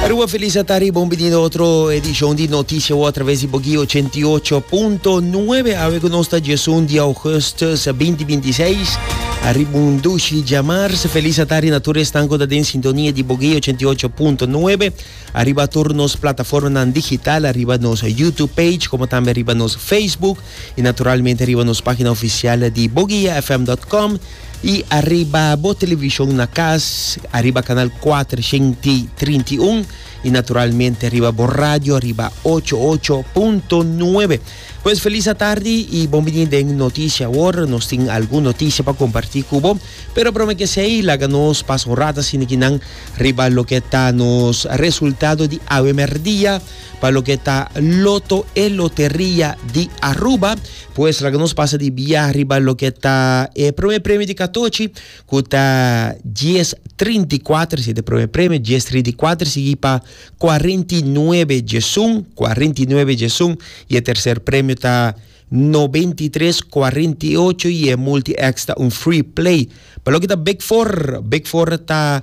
Aruba Feliz a ta riba un binido otro edishon di Noticia Wo a traves di Bogi 88.9 awe ku nos ta Jesun di Augustus 2026 a riba un dushi djamars Feliz a ta riba tur esnan ku ta den sintonia di Bogi 88.9 a riba tur nos plataformanan digital a riba nos YouTube page komo tambe a riba nos Facebook y naturalmente riba nos pagina oficial di boguiafm.com y ariba bo television na cas ariba canal 431 y naturalmente ariba bo radio ariba 88.9. Pues feliz atardi y bon bini den noticia awor. Nos tin algun noticia pa comparti cu bo. Pero prome que sei laga nos pas un rata sinikinan riba loke ta nos resultado di awe merdia. Pa loke ta loto e loteria di Aruba pues laga nos pasa di bia riba loke ta e prome premio di katochi ku ta dies trinta i kuater si ta prome premio dies trinta i kuater sigi pa kuarenta i nuebe diesun kuarenta i nuebe diesun y e terser premio ta noventa i tres kuarenta i ocho y e multi X ta un free play pa loke ta big for big for ta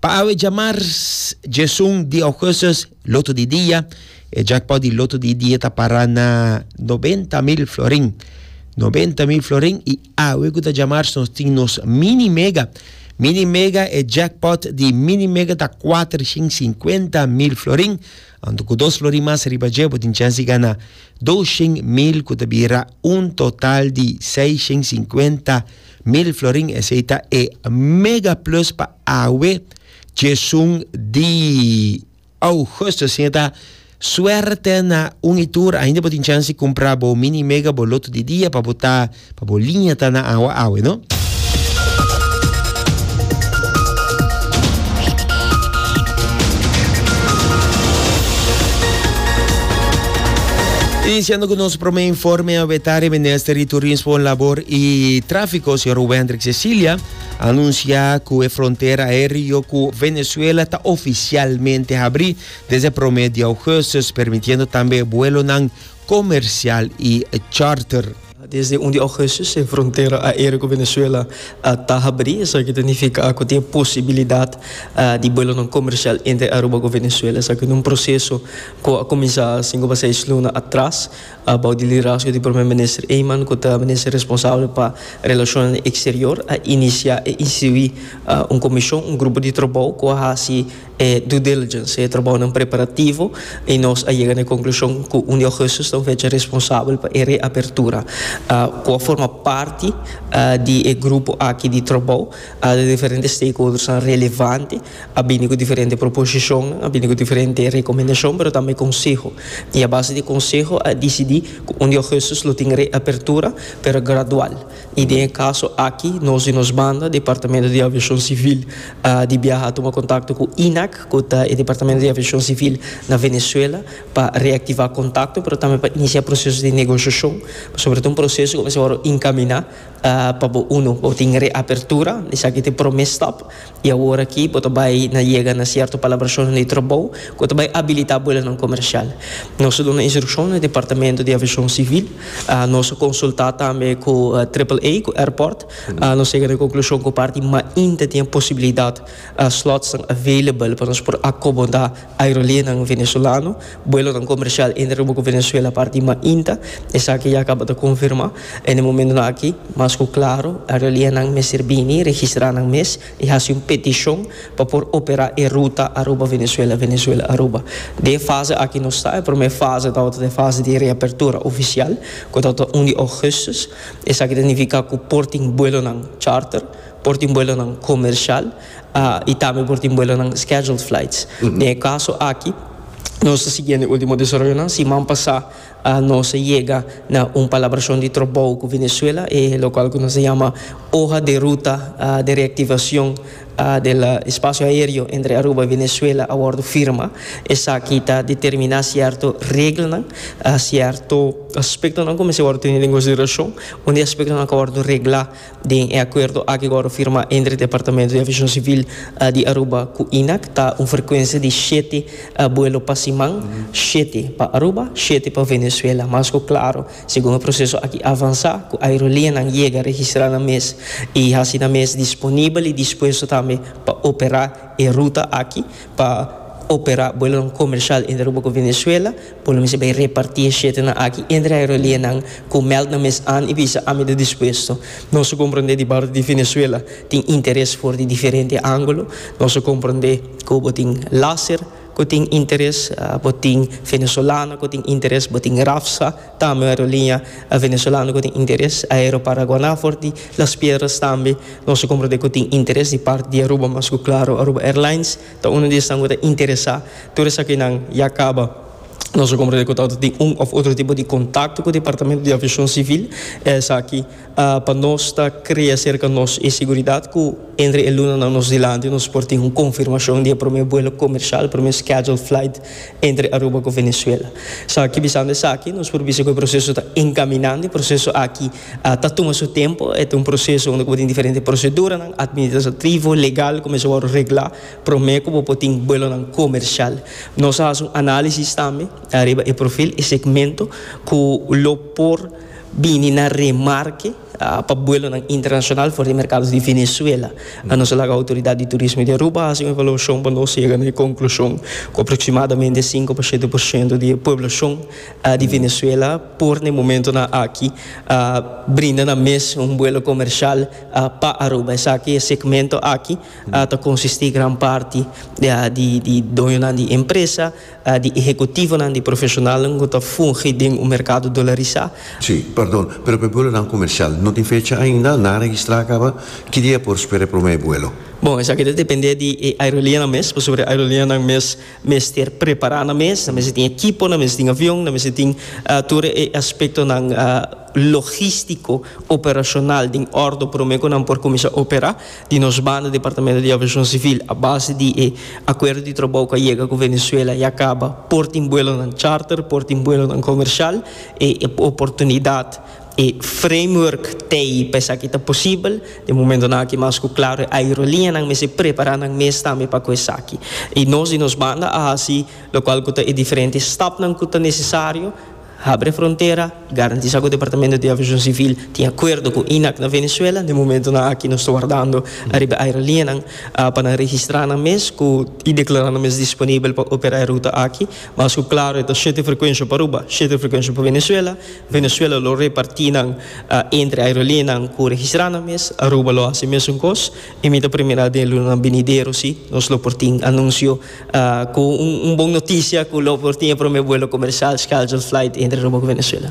Pa awe djamar djesun di augustus loto di dia. E jackpot di loto di dia ta para na noventa mil florin. Noventa mil florin y awe cu ta djamar nos tin nos mini mega. Mini mega e jackpot di mini mega ta cuatrocientos y cincuenta mil florin. Anto cu dos florin mas riba dje bo tin chance di gana doscientos mil cu ta bira un total di seiscientos y cincuenta Mil florin esey ta e mega plus pa awe tjesun di Augusto. Si e ta suerte na un y tur ainda bo tin chans di cumpra bo mini mega bo loto di dia pa bo ta pa bo liña ta na awa awe no. Iniciando cu nos prome informe awe tarde Minister di Turismo, Labor. E Tráfiko, señor Hugo Hendrik Cecilia, a anunsiá ku e frontera aéreo ku Venezuela ta ofisialmente habrí desde e promé di ougùstùs, permitiendo tambe e buelonan komersial i charter. Desde un di ougùstùs e frontera aéreo ku Venezuela ta habrí, esaki ta nifiká ku tin e posibilidat di buelonan komersial entre Aruba ku Venezuela. Esaki ta un proseso ku a kuminsá sinku pa seis luna atras. Bou di liderazgo di Prome Minister Eman, ku ta Minister responsabel pa Relashonnan Eksterior, a inisiá i instituí un komishon, un grupo di trabou ku a hasi e due diligence, e trabounan preparativo, i nos a yega na e konklushon ku un di ougùstus ta un fecha responsabel pa e reapertura, ku a forma parti di e grupo aki di trabou, di diferente stakeholdersnan relevante. A bini ku diferente proposishon, a bini ku diferente rekomendashon, pero tambe konseho. I a base di e konseho a disidí ku un di ougùstus lo tin reapertura, pero gradual. I den e kaso aki nos di nos banda, Departamento di Aviashon Sivil di biaha a tuma kontakto ku INAC, ku ta e departamento di aviashon sivil na Venezuela, pa reaktivá kontakto, pero tambe pa inisiá proseso di negoshashon. Pasobra e ta un proseso ku a mester wòrdu inkaminá pa bo unu. Bo tin reapertura, esaki ta e promé stap. I awor aki bo ta bai na yega na sierto palabracionnan di trabou cu ta bai abilita buelonan comercial. Nos a duna instruccion na Departamento di Aviacion Civil. Nos a consulta tambe cu Triple-A, cu airport. Nos yega na e conclusion cu parti mainta tin e posibilidad, slotsnan available pa nos por acomoda. Aerolinenan Venezolano, buelonan comercial entre Aruba cu Venezuela parti di mainta. Esaki ya caba ta confirma. En e momentonan aki, mas cu claro, aerolinenan mester bini, registra nan mes y haci un peticion pa por opera e ruta Aruba-Venezuela, Venezuela-Aruba. Den e fase aki nos ta. E prome fase tabata ta e fase di reapertura oficial, cu tabata un di augustus. Esaki ta nifica cu por tin buelonan charter, por tin buelonan comercial. y tambe por tin buelonan scheduled flights. Den e caso aki nos a sigui na e ultimo desaroyonan. Siman pasa nos a yega na un palabracion di trabou cu Venezuela, e locual cu nos a yama Hoja de Ruta de Reactivacion del Espacio Aereo entre Aruba y Venezuela a wordo firma. Esaki ta determina cierto reglanan, cierto aspectonan cu mester wordo tene den consideracion. Un di e aspectonan cu a wordo regla Den e akuerdo aki ku wòrdu firmá entre Departamento di Aviashon Sivil di Aruba ku INAC ta un frekuensia di shete buelo pa siman, shete pa Aruba, shete pa Venezuela. Mas ku klaru, segun e proseso aki avansá, ku aerolianan yega registrá nan mes i hasi nan mes disponibel i dispuesto tambe pa operá e ruta aki, pa operá buelonan komershal entre Aruba ku Venezuela, Bo lo mester bay reparti e shetenan aki entre aerolineanan cu meld nan mes an y bisa ami ta dispuesto. Nos a comprende di parti di Venezuela tin interes for di diferente angulo. Nos a comprende cu bo tin Laser cu tin interes, bo tin Venezolana cu tin interes, bo tin Rafsa, tambe un aerolinea Venezolano cu tin interes, Aeroparaguana for di Las Piedras tambe nos a comprende cu tin interes di parti di Aruba mas cu claro Aruba Airlines. Ta uno di esnan cu ta interesa. Tur esakinan ya caba. Nos a comprende cu ta tin un of otro tipo di contacto cu Departamento di Aviacion Civil. Esaki pa nos ta crea cerca nos e seguridad cu entre e lunanan nos dilanti nos por tin un confirmacion di e prome vuelo comercial, prome scheduled flight, entre Aruba cu Venezuela. Esaki, bisando esaki, nos por bisa cu e proceso ta encaminando. E proceso aki A ta tuma su tempu, e ta un proseso unda ku bo tin diferente proseduranan administrativo, legal ku mester wòrdu reglá promé ku bo por tin buelonan komersial. Nos a hasi un análisis tambe ariba e profil, e segmento ku lo por bini na remarke pa buelonan internashonal for di e merkado di Venezuela. Nos a laga outoridat di turismo di Aruba hasi un evaluashon pa nos yega na e konklushon ku aproksimadamente sinku pa shete por shento di e pueblashon di Venezuela por na e momentonan aki a brinda nan mes un buelo comercial pa Aruba. Esaki e segmento aki ta consistí gran parti di di doñonan di empresa, di ehecutivonan, di profesionalnan cu ta fungi den un mercado dolarisá. Sí, perdon, pero pa e buelonan comercial no tin fecha ainda, nan a registrá a caba, ki dia e por spera e prome buelo? Bon, esaki ta dependé di e aerolianan mes, pasobra e aerolianan mes. mester prepará nan mes, nan mester tin ekipo, nan mester tin avion, nan mester tin tur e aspektonan logístiko, operashonal den òrdu promé ku nan por kuminsá operá. Di nos banda Departamentu di Aviashon Sivil a base di e akuerdo di trabou ku a yega ku Venezuela ya kaba, por tin buelonan charter, por tin buelonan komershal, e oportunidat. E framework tei pa esaki ta posibel. Den momentonan aki mas ku klaro e aerolineanan mester prepará nan mes tambe pa ku esaki. I nos di nos banda a hasi lokual ku ta e diferente stapnan ku ta nesesario, habri e frontera, garantisá ku Departamento di Aviashon Sivil tin akuerdo ku INAC na Venezuela. Den momentonan aki nos ta wardando ariba e aerolineanan pa nan registrá nan mes ku i deklará nan mes disponibel pa operá e ruta aki. Mas ku klaro e ta shete frekuensha Aruba, shete frekuensha pa Venezuela. Venezuela lo reparti nan entre aerolineanan ku registrá nan mes. Aruba lo hasi e mesun kos. I mi ta primera den lunanan binidero si nos lo por tin anunsio ku un bon notisia ku lo por tin e promé buelo komersial scheduled flight entre Aruba ku Venezuela.